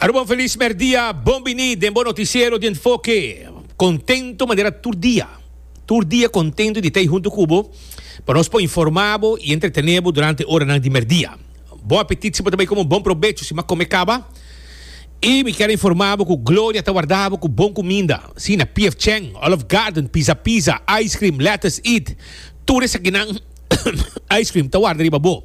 Aruba feliz merdia, bon bini den bo noticiero di enfoke. Contento manera tur dia. Tur dia contento di ta ei hunto cu bo pa nos por informa bo y entretene bo durante oranan di merdia. Bon apetit si bo ta bay come, bon probecho si bo a come caba. Y mi kier a informa bo cu Gloria ta warda bo cu bon cuminda. Si, na PF Cheng, Olive Garden, Pizza Pizza, Ice Cream, Lettuce Eat, tur esakinan. Icecream ta warda riba bo.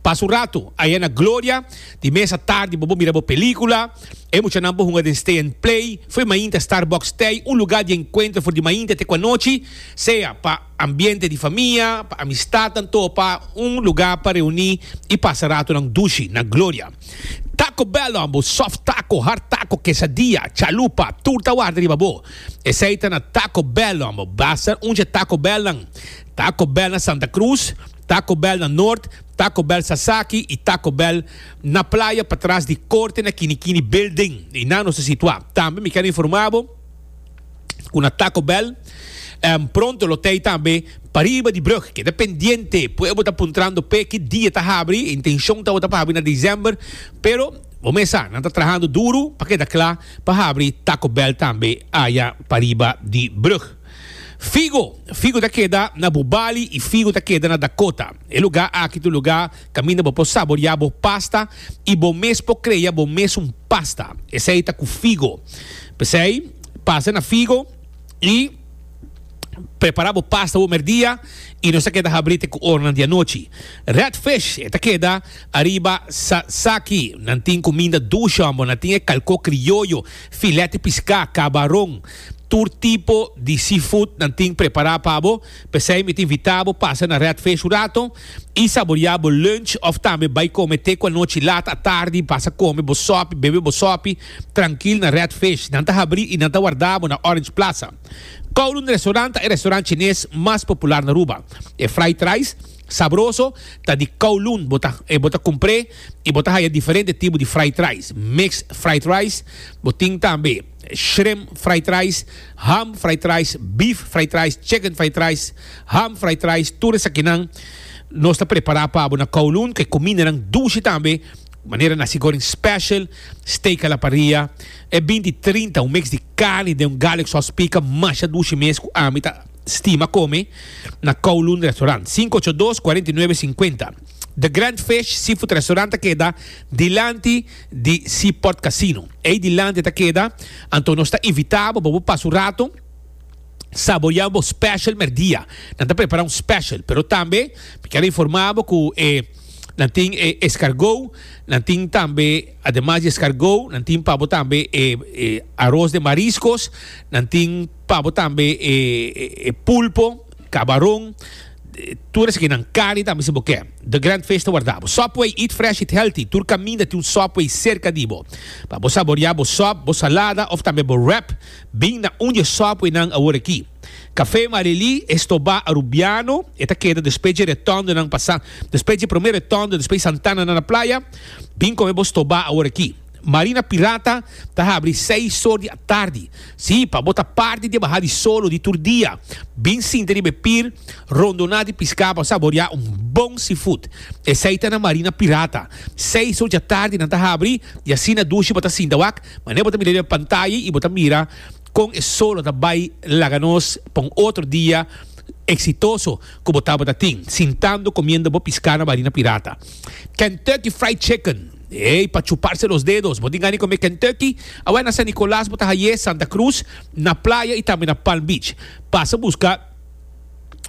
Pasa un ratu aya na Gloria, di mes a tardi bo bo mira bo pelicula. E muchanan por hunga den Stay and Play, for mainta Starbucks Stay, un lugar di encuentro for di mainta te cua nochi, sea pa ambiente di famia, pa amistadnan to pa un lugar pa reuni y pasa ratunan dushi na Gloria. Taco Bell Lambo, soft taco, hard taco, quesadilla, chalupa, tur ta warda riba bo. Esey ta na Taco Bell Lambo. Basta un dje Taco Bell nan. Taco Bell na Santa Cruz, Taco Bell na Noord, Taco Bell Sasaki y Taco Bell na Playa patras di Corte na Kini Kini Building. Y nan nos ta situa. Tambe mi ken informa bo cu na Taco Bell pronto lo ta ey tambe pariba di brug. Keda pendiente pue bo ta puntrando p'e ki dia ta habri. E intencion tabata pa habri na December pero bo mes sa nan ta trahando duro pa keda cla pa habri Taco Bell tambe aya pariba di brug. Figo, figo ta keda na bo bali i figo ta keda na Dakota. E lugá aki ta un lugá kaminda bo por saboriá bo pasta i bo mes por krea bo mes un pasta. Esei ta ku figo. P'esei, pasa na figo i prepará bo pasta bo merdia i nos ta keda habrí te ku oranan di anochi. Redfish, e ta keda ariba sasaki. Nan tin kuminda dushon, bo nan tin e kalkó krioyo, filèt di piská, kabaron. Tur tipo di seafood nan tin prepará pa bo, p'esei mi ta invitá bo pasa na Redfish un rato i saboriá bo lunch òf tambe bai kome te ku anochi lat a tardi pasa kome bo sòpi, bebe bo sòpi trankil na Redfish. Nan ta habrí i nan ta warda bo na Orange Plaza. Kowloon Restaurant ta e restaurant chines mas popular na Aruba. E fried rice sabroso ta di Kowloon, bo ta bo ta kumpr'é i bo ta haya diferente tipo di fried rice. Mixed fried rice bo tin tambe. shrimp fried rice, ham fried rice, beef fried rice, chicken fried rice, ham fried rice, tur esakinan nos ta prepara pa bo na Kowloon, ku e kumindanan dushi tambe, manera nasi goreng special, steak a la parrilla, e bin di trinta, un mix di carni den un garlic sauce pica masha dushi mes ku ami ta stima kome na Kowloon Restaurant, sinku ocho dos, kuarenta i nuebe, sinkuenta. The Grand Fish Seafood Restaurant ta keda dilanti. di Seaport Casino. Ei dilanti ta keda, anto nos ta invita bo pa bo pasa un rato saborea bo special merdia. Nan ta prepara un special, pero tambe mi kier a informa bo cu e nan tin e escargot, nan tin tambe ademas di escargot nan tin pa bo tambe e e aros de mariscos, nan tin pa bo tambe e e pulpo. Cabaron, tur esquinan. Cali tambe si bo ke. The Grand Fish ta warda bo. Subway, eat fresh, eat healthy. Tur caminda tin un Subway cerca di bo. Pa bo saborea bo sub, bo salada of tambe bo wrap, bin na un di e Subwaynan awor aki. Cafe Marily, Estobá, Arubiano, e ta keda despues dje retondonan pa San, despues dje prome retondo, despues Santana na na playa, bin come bo Estobá awor aki. Marina Pirata ta habri seis sor di atardi. Sí, pa bo ta parti di e baha di solo di tur dia, bin sinta riba e pir, rondoná di piská pa saboriá un bon seafood. Esei ta na Marina Pirata. Seis sor di atardi nan ta habri, i asina dushi bo ta sinta wak, manera bo ta mira riba e pantaya i bo ta mira Kon e solo ta bai laga nos pa un otro dia eksitoso ku bo tabata tin, sintando komiendo bo piská na barina pirata? Kentucky Fried Chicken, ey, pa chuparse los dedos! Bo tin gana di kome Kentucky? Awor na San Nikolas bo ta haye, Santa Krus, na playa i tambe na Palm Beach. Pasa buska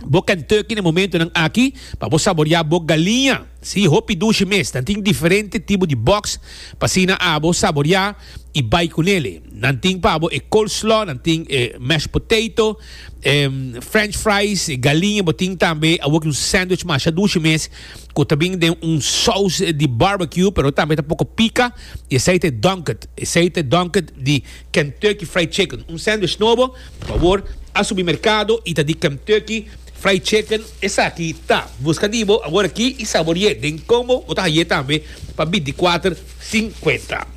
bo Kentucky na e momentunan aki pa bo saboriá bo galiña. Sí, hopi dushi mes. Nan tin diferente tipo di box pa asina abo saboriá. y bay cu nele. Nan tin pa bo e coleslaw, nan tin e mashed potato, e french fries, e galiña, bo tin tambe awor ki un sandwich masha dushi mes cu ta bin den un saus di barbecue pero tambe ta poco pica y esey ta e Dunked, esey ta e Dunked di Kentucky Fried Chicken, un sandwich nobo, pabor a subi mercado y ta di Kentucky Fried Chicken, esaki ta, busca di bo awor aki y saborie den combo bo ta haye tambe pa binti cuater. 50.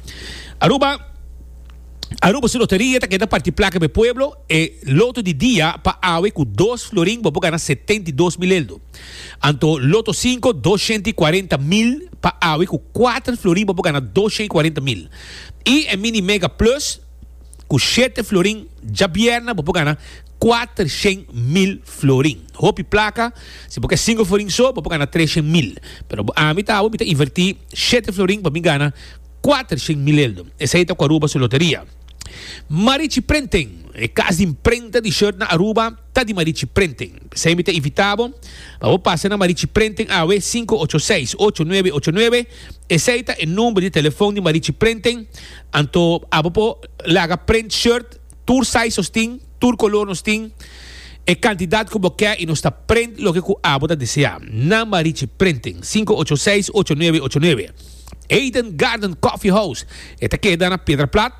Aruba Aruba su loteria ta keda parti plaka be pueblo e loto di dia pa awe ku dos florin bo por gana setenta i dos mil eldo. Anto loto sinku doshenta i kuarenta mil pa awe ku kuater florin bo por gana doshenta i kuarenta mil. I e mini mega plus ku shete florin djabièrna bo por gana Kuater shen mil florin. Hopi plaka. Si bo ke sinku florin so, bo por gana tres shen mil. Pero bo ami ta abo, mi ta inverti shete florin pa mi gana kuater shen mileldo. Esei ta ku Aruba su loteria. Marichi Printing, E kas di imprenta di shirt na Aruba ta di Marichi Printing. P'esei mi ta invita bo pa bo pasa na Marichi Printing awe sinku ocho seis, ocho nuebe ocho nuebe. Esei ta e number di telefon di Marichi Printing anto abo por laga print shirt. Tur size nos tin, tur color nos tin, e cantidad cu bo ke y nos ta print loke cu abo ta desea. Nan ba Richie Printing, sinku ocho seis ocho nuebe ocho nuebe. Eden Garden Coffee House, e ta keda na Piedra Plat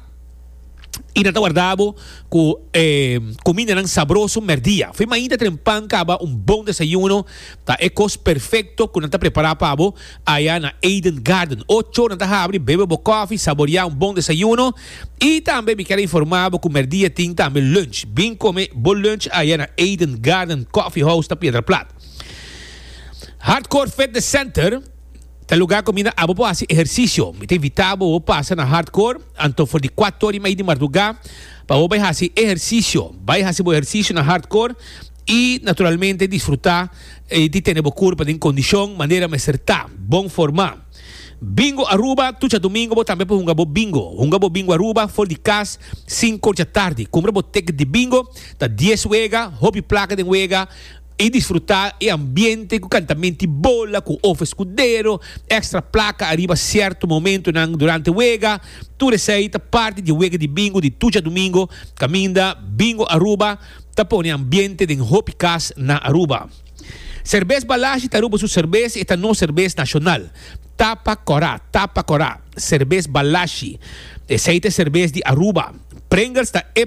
y nan ta warda bo cu e cumindanan sabroso merdia. Fin mainta tren pan caba un bon desayuno ta e cos perfecto cu nan ta prepara pa bo. Aya na Eden Garden ochonan ta habri bebe bo kofi, saborea un bon desayuno y tambe mi kier informa bo cu merdia tin tambe lunch. Bin come bo lunch aya na Eden Garden Coffee House ta Piedra Plat. Hardcore Fitness Center ta lugar cominda abo por haci ehercicio. Mi ta invita bo bo pasa na Hardcore anto for di cuatori y medio di marduga pa bo bay haci ehercicio. Bay haci bo ehercicio na Hardcore. I naturalmente disfrutá di tene bo kurpa den kondishon manera mester ta, bon forma. Bingo Aruba, Tucha Domingo bo tambe por hunga bo bingo. Hunga bo bingo Aruba for di kas sinku dja tardi. Kumpra bo ticket di bingo, ta dies wega, hopi plaka den wega i disfrutá e ambiente ku kantamenti bola, ku of eskudero, ekstra plaka ariba sierto momentunan durante wega. Tur esei ta parti di e wega di bingo di Tucha Domingo kaminda Bingo Aruba. ta pone ambiente den hopi cas na Aruba. Cervez Balashi ta Aruba su cervez y e ta nos cervez nacional. Tapa cora, tapa cora, Cervez Balashi. Esey ta e cervez di Aruba. Pringles ta e.